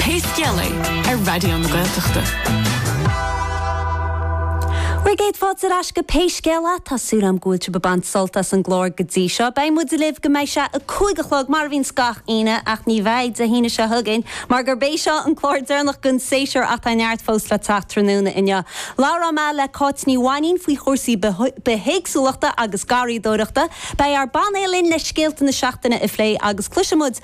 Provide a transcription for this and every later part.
Pé scéal é, ar Raidió na Gaeltachta. Bhuel, céad fáilte ar ais go Pé Scéal É, tá súil agam go bhfuil sibh ag baint sult as an gclár go dtí seo. Beidh muid libh go mbeidh sé a cúig a chlog, mar a bhíonns gach Aoine, ach ní bheidh Dé hAoine seo chugainn, mar gurb é seo an clár deireanach den séasúr, ach tá neart fós le teacht tráthnóna inniu. Labhróidh mé le Cáit Ní Mhainín faoi chúrsaí bithéagsúlachta agus garraíodóireachta. Beidh ár bpainéal linn le scéalta na seachtaine a phlé agus cloisfidh muid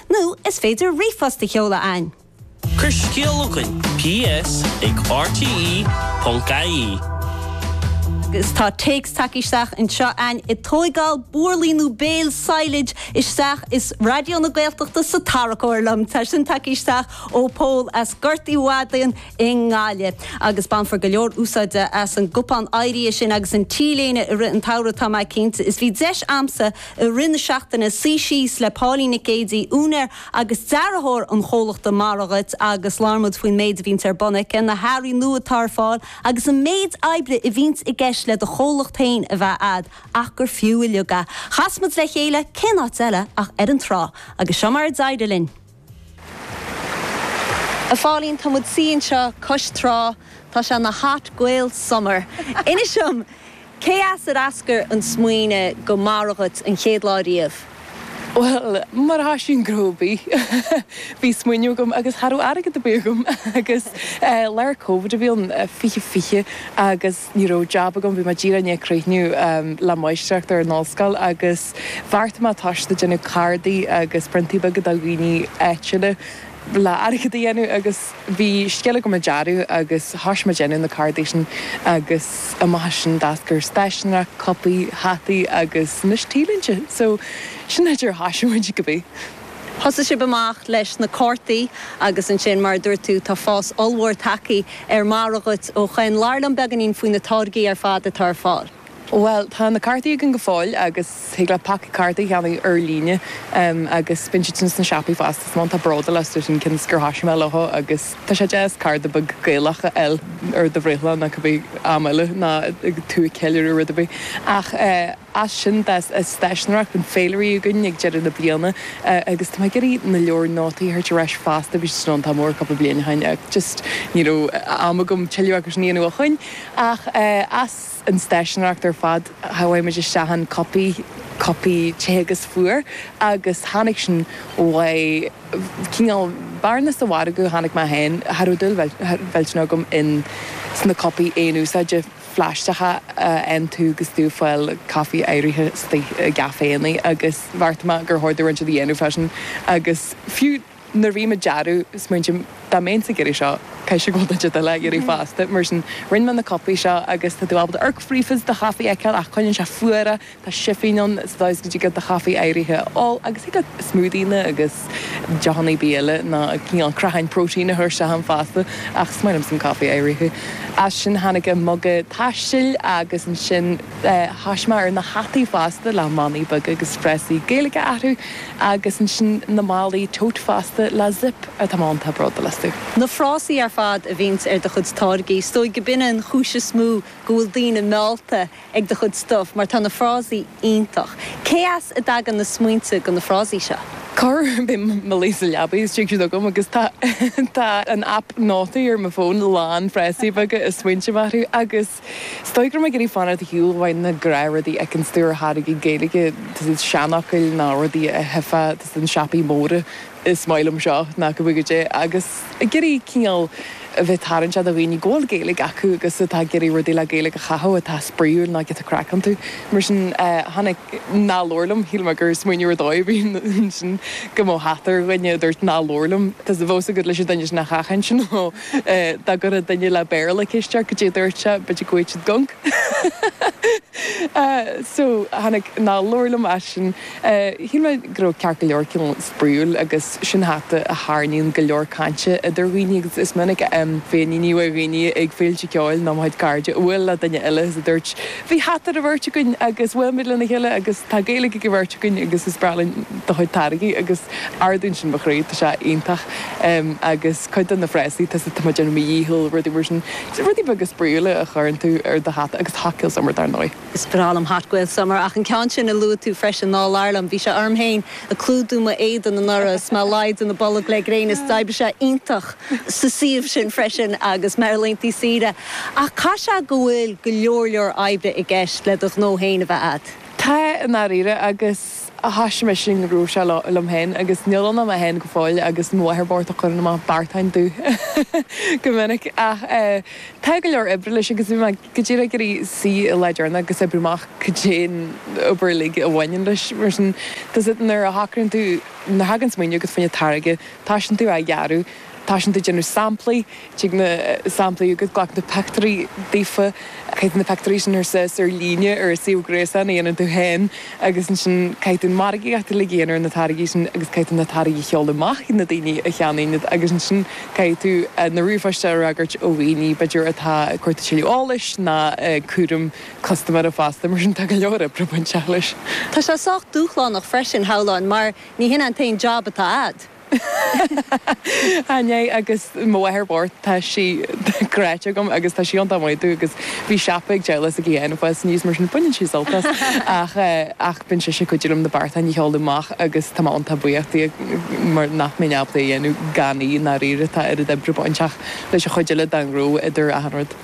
Nó is féidir ríomhphost a sheoladh ann. Cuir scéal chugainn, ps ag rte.ie. Agus tá téacs tagtha isteach anseo a'inn ag tóigeáil burlaí nó bale silage isteach is Raidió na Gaeltachta sa tarracóir liom. Tá sin tagtha isteach ó Pól as Gort Uí Mhadáin i nGaillimh. Agus bainfear go leor úsáide as an gcupán áirithe sin agus an T-léine i rith an tsamhraidh tá mé cinnte. Is bhí deis a'msa I rith na seachtaine, suí síos le Póilín Nic Géidigh, úinéir agus dearthóir an chomhlachta Mora Dhuit, agus labhair muid faoin méid a bhíonns ar bun aici, na hearraí nua atá ar fáil, agus an méid oibre a bhíonns i gceist le do chomhlacht féin a bheith a'd, ach gur fiú uiliug é. Chas muid le chéile, cén áit eile ach ar an trá, agus seo mar a d'éirigh linn. A Phóilín, tá muid suí anseo cois trá, tá sé ina Hot Gael Summer. Inis dom, cé as ar eascair an smaoineamh do Mora Dhuit an chéad lá riamh? Bhuel, mar a thoisíonn gnó ar bith, bhí smaoineamh agam agus cha raibh airgead ar bith agam agus lár covid a bhí ann, fiche fiche, agus. ní raibh jab agam, bhí mé díreach i ndiaidh críochnú le máistreacht ar an ollscoil agus bheartaigh mé toiseacht ag déanamh cártaí agus priontaí beaga do dhaoine áitiúla le airgead a dhéanamh agus bhí scil agam i dearadh agus thoisigh mé ag déanamh na cártaí sin agus amach as sin d'eascair stáiseanóireacht, cupaí, hataí agus anois T-léinte so sin an dóigh ar thoisigh muid cibé. Thosaigh sibh amach leis na cártaí agus ansin, mar a dúirt tú, tá fás ollmhór tagthaí ar Mora Dhuit ó shoin. Labhair liom beagáinín faoi na táirgí ar fad atá ar fáil. Bhuel, tá na cártaí againn go fóill agus thig leat paca cártaí a cheannach ar líne agus bíonn siad sin sna siopaí fosta. Is maith an tá bród ar leith as sin cionn is gur thoisigh mé leo agus tá sé deas cárta beag Gaelach a fháil ar do bhreithlá nó cibé am eile nó tú ag ceiliúradh rud ar bith ach eh. As sin d'fhás stáiseanóireacht ann, féilirí againn ag deireadh na bliana agus tá mé ag iarraidh na leabhair nótaí a thabhairt ar ais fosta, bhí siad sin iontach mór cúpla bliain ó shin ach just ní raibh am agam tuilleadh acu sin a dhéanamh ó shoin. Ach as an stáiseanóireacht ar fad chuaigh muid isteach in cupaí, cupaí te agus fuar agus tháinig sin ó chineál bearna sa mhargadh a chonaic mé féin, cha raibh dúil mhillteanach agam in sna cupaí aon úsáide. phlaisteacha a aontú agus tú ag fáil caife oighrithe i gcaiféannaí agus bheartaigh mé gur chóir dom rud inteacht a dhéanamh faoi sin agus fiú nuair a bhím ag dearadh, smaointím dá mbeinnse ag iarraidh seo, caithfidh sé go bhfuil duine inteacht eile á iarraidh fosta, mar sin rinne mé na cupaí seo agus tá tú ábalta amharc fríd agus do chaife a fheiceáil ach coinníonn sé fuar é. Tá sifín ann sa dóigh is go dtig leat do chaife oighrithe a ól agus thig leat smúdaíonna agus deochanna ar bith eile nó cineál creatháin protein a thabhairt ann fosta ach is maith liomsa an caife oighrithe. As sin tháinig an muga taistil agus ansin chas mé ar na hataí fosta le manaí beaga agus frásaí Gaeilge orthu agus ansin na málaí tote fosta le zip atá mé iontach bródúil astu. Na frásaí ar fad a bhíonns ar do chuid táirgí, is dóigh go b'in an chúis is mó go bhfuil daoine meallta ag do chuid stuif mar tá na frásaí iontach. Cé as a dtagann na smaointe do na frásaí seo? Corr uair bím i mo luí sa leabaidh is tig siad chugam agus tá tá an app nótaí ar mo fón lán frásaí beaga is smaointe orthu agus is dóigh go raibh mé ag iarraidh fanacht ar shiúl ó na gnáthrudaí a fheiceanns tú ar tháirgí Gaeilge seanfhocail nó rudaí a tchífeá sna siopaí móra Is maith liom seo nó cibé goidé agus ag iarraidh cineál a bheith tarraingteach do dhaoine go bhfuil Gaeilge acu agus atá ag iarraidh rudaí le Gaeilge a chaitheamh atá spraíúil ná giota craic iontu. Mar sin tháinig Ná labhair liom, shíl mé gur smaoineamh ar dóigh a bhí ansin go mbeadh hata ar dhuine a dúirt Ná labhair liom. Tá a fhios agat leis an duine sin nach ach ansin nó dá gcuirfeadh duine le Béarla ceist ort goidé a dúirt sé b'fhéidir go bhfaigheadh siad gonc. So tháinig Ná labhair liom as sin. Shíl mé go raibh ceart go leor cineál spraíúil agus sin hata a tharraingíonn go leor cainte idir dhaoine agus is minic féiníní ó dhaoine ag féilte ceoil nó mo chuid cairde a bhuail le duine eile is a dúirt Bhí hata ar an bheirt againn agus bhuail muid lena chéile agus tá Gaeilge ag an bheirt againn agus is breá linn do chuid táirgí agus ardaíonn sin mo chroí, tá sé iontach agus cuid de na frásaí tá a fhios agat tá mé ar mo dhícheall, rudaí mar sin. Rudaí beaga spraíúla a chuireann tú ar do hata agus hot Gael summer dar ndóigh. Is breá liom Hot Gael Summer, ach an ceann sin a luaigh tú freisin, ná labhair liom. Bhí sé orm féin ag clúdú m'éadan anuraidh is mé ag déanamh bolg le gréin, is d'oibrigh sé iontach sa suíomh sin freisin agus mé ar laethantaí saoire. Ach caithfidh sé go bhfuil go leor leor oibre i gceist le do ghnó féin a bheith agat? Tá, i ndáiríre, agus. a thoisigh mise an gnó seo liom féin agus níl ann ach mé féin go fóill agus mo mháthair bocht a chuireann amach beartáin domh go minic ach tá go leor oibre leis agus bhí mé go díreach ag iarraidh suí an lá deireanach agus oibriú amach cad é an obair uilig a bhaineann leis mar sin tá sé nuair a thagann tú nuair a thagann smaoineamh chugat fá choinne táirge toisíonn tú á dhearadh tosaíonn tú ag déanamh samplaí, tig na samplaí agus glac na pictiúirí daofa, caith na pictiúirí sin suas ar líne ar suíomh gréasáin a dhéanann tú féin agus ansin caithfidh tú an mhargaíocht a dhéanamh ar na táirgí sin agus caithfidh tú na táirgí a sheoladh amach chuig na daoine a cheannaíonn iad agus ansin caithfidh tú na ríomhphoist a fhreagairt ó dhaoine b'fhéidir atá ag cuartú tuilleadh eolais ná cúram custaiméara fosta mar sin tá go leor oibre bainteach leis. Tá sé sách dúshlánach freisin shamhlóinn mar ní hin an t-aon jab atá agat. Ní hé, Agus mo mháthair bocht, tá sí cráite agam agus tá sí iontach maith dúinn agus bhí siopa ag Deghla sa gcliath anois agus arís mar sin, baineann sí sult as ach eh, ach bíonn sise ag cuidiú liom na beartáin a sheoladh amach agus tá mé iontach buíoch di mar nach mbeinn ábalta é a dhéanamh gan í i ndáiríre, tá oiread oibre bainteach leis an chuid eile den ghnó idir achan rud.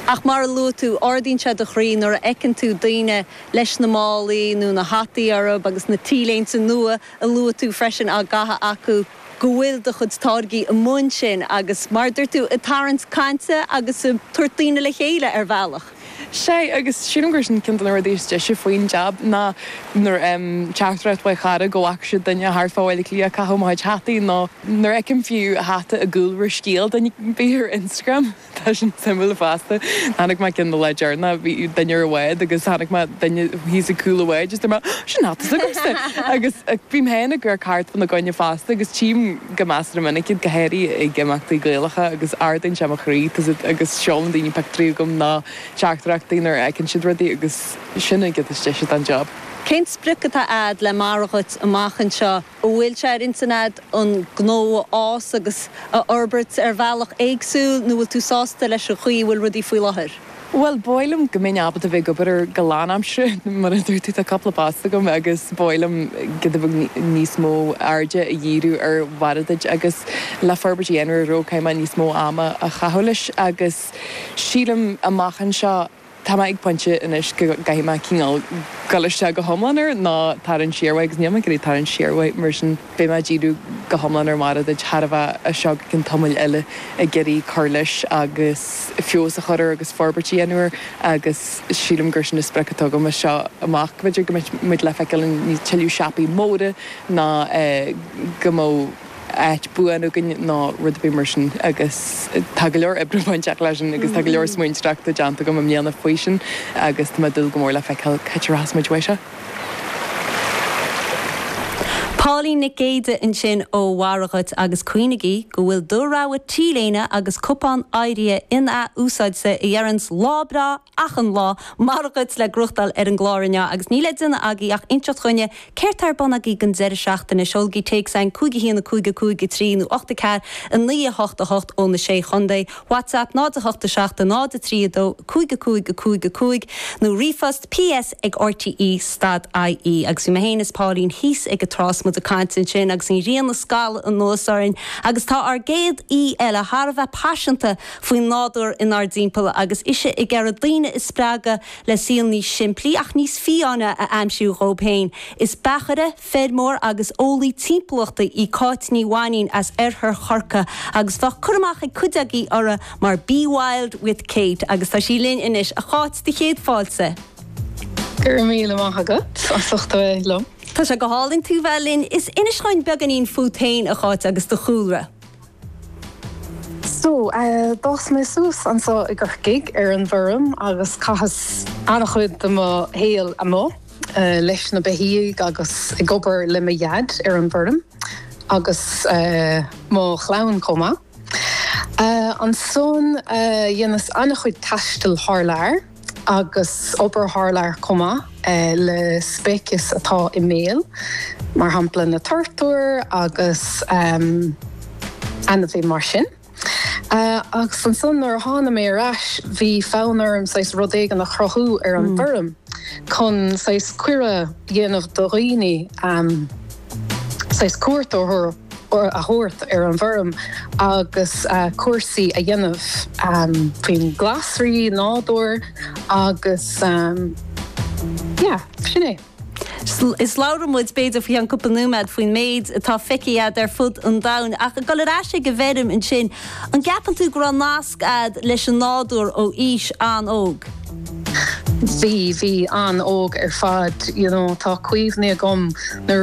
Ach mar a luaigh tú, ardaíonn sé do chroí nuair a fheiceann tú daoine leis na málaí nó na hataí orthu agus na t-léinte nua, a luaigh tú freisin á gcaitheamh acu, go bhfuil do chuid táirgí i mbun sin agus, mar a dúirt tú, ag tarraingt cainte agus ag tabhairt daoine le chéile ar bhealach. Sea, agus sílim gur sin ceann de na rudaí is deise faoin jab, ná nuair a fhaighim teachtaireacht ó mo chara go bhfaca siad duine thart fá Bhaile Átha Cliath ag caitheamh mo chuid hataí, nó nuair a fheicim fiú hata i gcúlra scéil duine, b'fhéidir ar Instagram. Tá sin suimiúil fosta. Chonaic mé ceann le deireanas, bhí duine ar an bhád agus chonaic mé duine thíos ag cúl an bháid agus deir mé sin hata s'agamsa! Agus bím féin ag amharc thart fána gcoinne fosta agus tchím go measartha minic iad, go háirithe ag imeachtaí Gaelacha agus ardaíonn sé mo chroí agus seolann daoine pictiúirí chugam ná teachtaireachtaí nuair a fheiceann siad rudaí agus sin an chuid is deise den job. Cén sprioc atá a'd le Mara Duit amach anseo? an bhfuil sé ar intinn agat an gnó a fhás agus a fhorbairt ar bhealach éagsúil nó bhfuil tú sásta leis an chaoi a bhfuil rudaí faoi láthair? Bhuel, ba mhaith liom go mbeinn ábalta bheith ag obair air go lánaimseartha, mar a dúirt tú, tá cúpla post agam agus ba mhaith liom go do bheadh níos mó airde a dhíriú ar Mhara Duit agus le forbairt a dhéanamh air, go gcaithfidh mé níos mó ama a chaitheamh leis agus sílim amach anseo, Tá mé ag pointe anois go gcaithfidh mé cineál goil isteach go hiomlán air nó tarraingt siar uaidh agus níl mé ag iarraidh tarraingt siar uaidh mar sin beidh mé ag díriú go hiomlán ar Mhara Duit thar a bheith as seo go ceann tamaill eile ag iarraidh cur leis agus feabhas a chur air agus forbairt a dhéanamh air agus sílim gur sin an sprioc atá agam as seo amach. B'fhéidir go mbeidh muid le feiceáil i dtuilleadh siopaí móra ná go mbeadh. áit buan againn nó rud ar bith mar sin agus tá go leor oibre bainteach leis sin agus tá go leor smaointeoireachta déanta agam i mbliana faoi sin agus tá mé ag dúil go mór le feiceáil cá háit a rachas muid uaidh seo. Póilín Nic Géidigh ansin ó Mhara Duit agus cuimhnigí go bhfuil do rogha T-léine agus cupán áirithe in-ath-úsáidte a deireanns lá breá achan lá. Mar a dúirt, tá leabhar le gnóthachtáil ar an gclár inniu agus níl le déanamh agaí ach inseacht dhuinne céard tá ar bun agaí don deireadh seachtaine. Seolaigí téacs chugainn, cúig a haon, a cúig, a cúig, a trí, nó ocht a ceathair, a naoi, a hocht, a hocht ó na sé chondae. Whatsapp, náid a hocht a seacht a náid a trí a dó, a cúig a cúig, a cúig, a cúig, nó ríomhphost, ps ag rte stad ie agus bhí mé féin is Pauline thíos ag an trá is muid ag caint ansin agus an ghrian a scalladh anuas orainn agus tá ár gcéad aoi eile thar a bheith paiseanta faoin nádúr inár dtimpeall agus ise ag iarraidh daoine a spreagadh le saol níos simplí ach níos fiáine a aimsiú dhóibh féin. Is beachaire, feirmeoir agus eolaí timpeallachta í Cáit Ní Mhainín as oirthear Chorcaí agus bheadh cur amach ag cuid agaibh uirthi mar Be Wild with Kate agus tá sí linn anois. A Cháit, sé do chéad fáilte. Go raibh míle maith agat as ucht a bheith liom. Tá sé go hálainn tú bheith linn. Is inis dhúinn beagainín fút féin, a Cháit, agus do chúlra. So, d'fhás mé suas anso i gCorcaigh, ar an bhfeirm, agus chaitheas an-chuid de mo shaol amuigh leis na beithígh agus ag obair le mo dhaid ar an bhfeirm, agus mo chlann chomh maith. Ansan, dheineas an-chuid taistil thar lear. agus obair thar lear chomh maith le speicis atá i mbaol, mar shampla na turtair agus ainmhithe mar sin. Agus ansan nuair a thána mé ar ais bhí fonn orm saghas rud éigin a chruthú ar an bhfeirm chun saghas cuireadh a dhéanamh do dhaoine, saghas cuairt a thabhairt ar an bhfeirm agus cúrsaí a dhéanamh faoin glasraí, nádúr agus yeah, sin é. Is labhróidh muid, b'fhéidir, faoi cheann cúpla nóiméad faoin méid atá feicthe agat ar fud an domhain. Ach ag dul ar ais ag an bhfeirm ansin, an gceapann tú go raibh nasc agat leis an nádúr ó aois an-óg? Bhí, bhí an-óg ar fad, you know. Tá cuimhní agam nuair a.